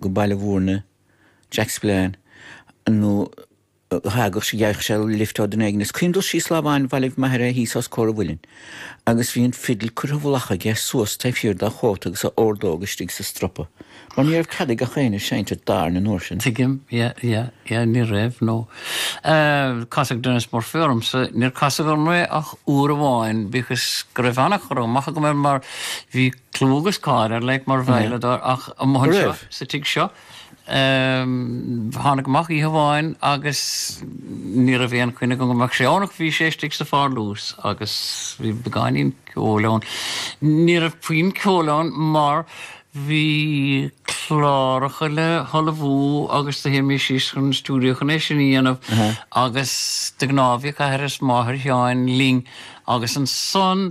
go Baile Mhúirne, Jack Spillane, nuair a thagadh sé, d'fhaigheadh sé lift ó dhuine éigin, is chun dul síos lá amháin bhailigh m'athair é thíos os comhair an mhuilinn agus bhí an fidil curtha i bhfolach aige suas taobh thiar dá chóta agus a ordóg istigh sa stropa, mar ní raibh cead ag gach éinne seinnt i dtábhairne an uair sin. Tuigim, yeah, yeah, yeah, ní raibh, no. Casadh Denis Murphy ormsa, níor casadh orm é ach uair amháin, bíodh is go raibh an-chur amach agam air mar bhí, clú agus cáil air like mar veidhleadóir ach amuigh anseo sa tigh seo. Thánag amach oíche amháin agus ní raibh aon choinne agam go mbeadh sé ann ach bhí sé istigh sa pharlús agus bhí beagáinín ceoil ann. Ní raibh puinn ceoil ann mar bhí cláracha le hullmhú agus do théimis síos chun an stiúideo chun é sin a dhéanamh agus de ghnáth bhíodh athair is máthair Sheáin linn agus ansan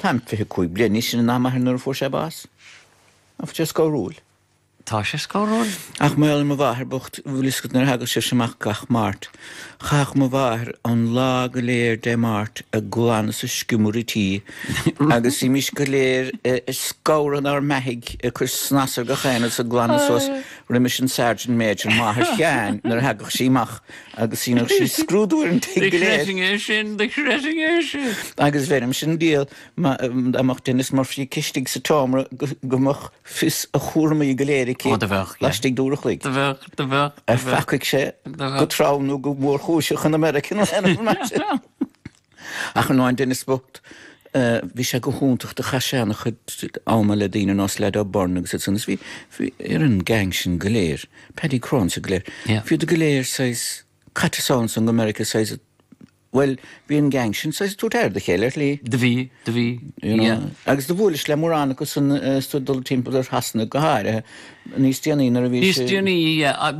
Táim fiche cúig bliain níos sine ná m'athair nuair a fuair sé bás. Tá sé scothrúil. Tá sé scothrúil? Ach maidir le mo mháthair bhocht, bhfuil fhios agat, nuair a thagadh sibhse amach gach Máirt. Chaitheadh mo mháthair an lá go léir Dé Máirt ag glanadh is ag sciomradh an tí agus bhímís go léir ag scanradh inár mbeathaidh ag cur snas ar gach aon rud is ag glanadh suas roimis an sergeant major, máthair Sheáin, nuair a thagadh sí amach. agus dheineadh sí scrúdú ar an tigh go léir. Do chreidfinn é sin, do chreidfinn é sin. Agus bheirimse an diabhal, dá mbeadh Denis Murphy aici istigh sa tseomra go mbeadh fios a chúramaí go léir aici laistigh d'uair a chloig. Do bheadh, do bheadh. Ar pheacaigh sé go trom nó go mórchúiseach in America nó in Éirinn? Ach in ann Denis bocht, bhí sé go hiontach do chaith sé an-chuid ama le daoine nós Lad O'Beirne agus ansan is bhí bhí ar an gang sin go léir, Paddy Cronin is iad go léir, Yeah. bhíodar go léir saghas caite ansan go Meiriceá saghas bhuel bhí an gang sin saghas ag tabhairt aire dá chéile ar shlí, Do bhí, do bhí, you know, yeah. agus do bhuaileas le mórán acu san is tú ag dul timpeall ar Shasana go háirithe. Níos déanaí, nuair a bhí sé. Níos déanaí,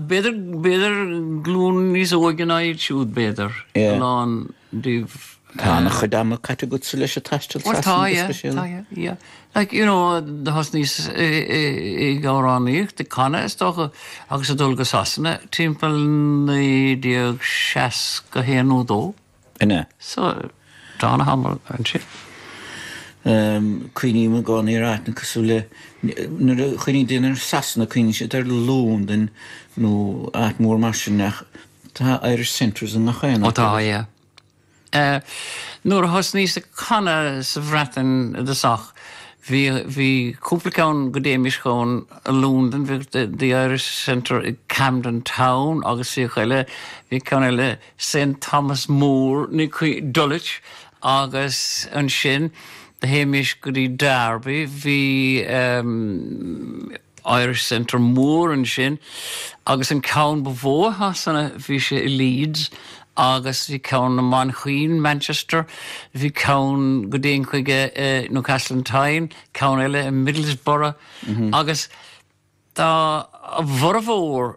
b'fhéidir, b'fhéidir glún níos óige ná iad siúd, b'fhéidir, a lán díobh. Tá an-chuid ama caite agatsa leis ag taisteal Shasana go speisialta. Well, tá, yeah, tá, yeah. Like, you know, do thosnaíos ag amhránaíocht, ag canadh, is dócha, agus ag dul go Sasana timpeall 1961 nó 2. Ina. So, tá an-tamall ansin. Em, cuimhním i gcónaí ar áiteanna cosúil le, nuair a chuimhníonn daoine ar Sasana, cuimhníonn siad ar Londain nó áit mhór mar sin ach tá Irish centres i ngach aon áit. Ó tá, yeah. Eh, nuair a thosnaíos ag canadh sa Bhreatain i dtosach, bhí, bhí cúpla ceann go dtéimis chun Londain, bhíodh the Irish centre i gCamden Town agus bhíodh eile, bhí ceann eile, St Thomas More, Ni Caoi, Dulwich, agus ansin théimis go dtí Derby, bhí ehm Irish Centre mór ansin agus an ceann ba mhó i Shasana bhí sé i Leeds agus bhí ceann i Manchain, Manchester, bhí ceann go dtéinn chuige i Newcastle upon Tyne, ceann eile i Middlesbrough agus tá a bhformhór.